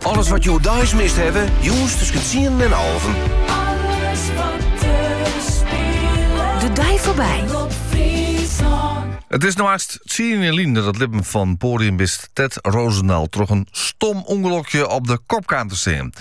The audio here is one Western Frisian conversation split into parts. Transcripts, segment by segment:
Alles wat jo deis mist hawwe, jûns tusken tsienen en alven. Alles wat der spilet. De dei foarby. Omrop Fryslân. It is no hast tsien jier lyn dat it libben fan podiumbist Tet Rozendal troch in stom ûngelokje op de kop kaam te stean.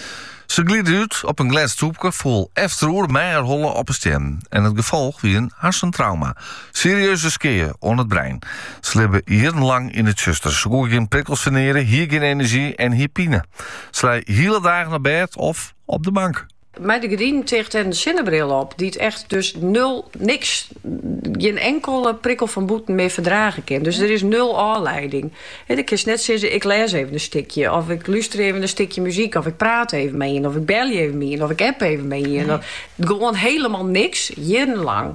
Se glide út op in glêd stoepke, foel efteroer mei har holle op 'e stien en it gefolch wie in harsentrauma. Serieuze skea oan it brein. Se libbe jierrenlang yn it tsjuster. Se koe gjin prikkels ferneare, hie gjin enerzjy en hie pine. Se lei hiele dagen op bêd of op de bank. Mei de gerdinen ticht en in sinnebril op, dy't echt dus nul, niks, gjin inkelde prikkel fan bûten mear ferdrage kin. Dus der is nul ôfleiding. Dan kinst net sizze, ik lês even in stikje of ik lúster even in stikje muzyk of ik praat even mei ien of ik belje even mei ien of ik app even mei ien. Gewoan helemaal niks, jierrenlang.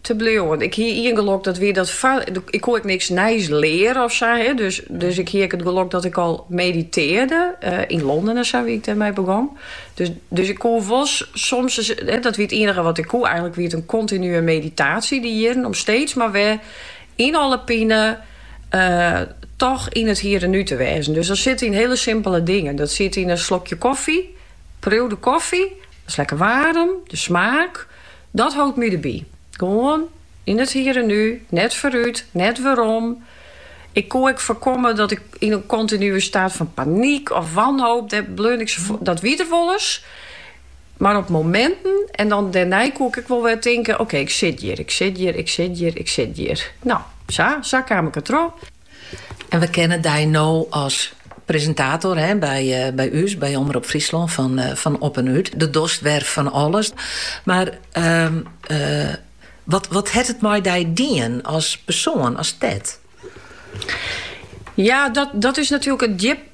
te bliuwen. Ik hie ien gelok, dat wie dat foar, ik koe ek niks nijs learen of sa. He. Dus, dus ik hie ek it gelok dat ik al meditearde uh, yn Londen en sa, wie ik dêrmei begûn. Dus, dus ik koe wol soms, he, dat wie it ienige wat ik koe. Eigenlik wie it in kontinue meditatie dy jierren, om steeds mar wer yn alle pine uh, toch yn it hier en nu te wêzen. Dus dat sit yn hiele simpele dingen. Dat sit yn in slokje koffie, priuw de koffie, dat is lekker waarm, de smaak. Dat hold my derby. Gewoan yn it hier en nu, net foarút, net werom. Ik koe ek foarkomme dat ik yn in kontinue staat fan panyk of wanhoop dêr bleaun ik safoar. Dat wie der wolris, mar op mominten en dan dêrnei koe ik ek wol wer tinke, okee, ik sit hjir, ik sit hjir, ik sit hjir, ik sit hjir. No, sa, sa kaam ik dertroch. En we kenne dy no as presintator by ús, by Omrop Fryslân, fan Op en Ut. Do dochst wer fan alles. Mar wat hat it mei dy dien as persoan, as Tet? Ja, dat is natuerlik in djip.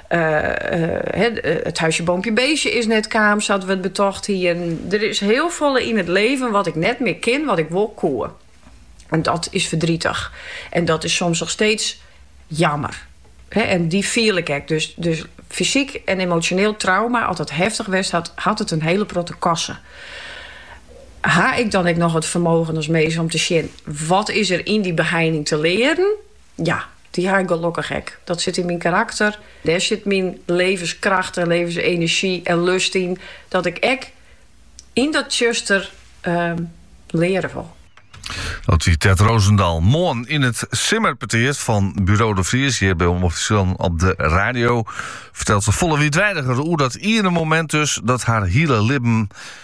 it huisje, boompje, beestje is net kaam sa't we it betocht hienen. Der is hiel folle yn it leven wat ik net mear kin wat ik wol koe. En dat is ferdrietich. En dat is soms noch steeds jammer. En dy fiel ik ek. Dus, dus fysiek en emotioneel trauma, as dat heftich west hat, hat it in hiele protte koste. Ha ik dan ek noch it fermogen as mins om te sjen wat is der yn dy beheining te learen? Ja, dy ha ik gelokkich ek. Dat sit yn myn karakter. Dêr sit myn levenskracht en levensenerzjy en lust yn, dat ik ek yn dat tsjuster leare wol. Dat wie Tet Rozendal. Moarn yn it simmerpetear fan Buro de Vries hjir by Omrop Fryslân op de radio fertelt se folle wiidweidiger oer dat iene momint dus, dat har hiele libben